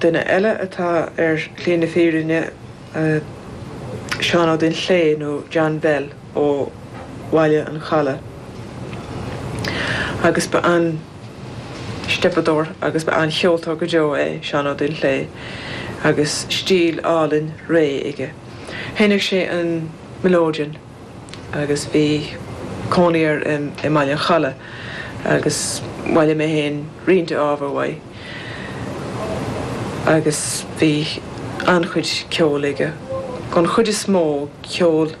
Duine eile atá ar shlí na fírinne, Seán Ó Duinnshléi nó John Bell ó Bhaile an Chalaidh. Agus ba an steipeadóir agus ba an cheoltóir go deo é Seán Ó Duinnshléi agus stíl álainn réidh aige. Sheinneadh sé an melodeon. agus bhí cónaí air i mBaile an Chalaidh agus bhailigh mé féin roinnt ábhar uaidh agus bhí an-chuid ceoil aige. An chuid is mó, ceol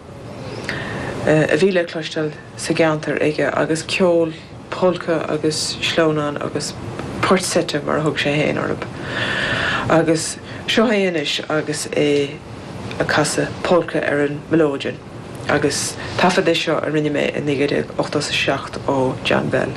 a bhí le cloisteáil sa gceantar aige agus ceol. polca agus sleamhnáin agus poirt seite mar a thug sé féin orthub. Agus seo é anois agus é ag casadh polca ar an melodeon agus taifead é seo a rinne mé i 1987 ó John Bell.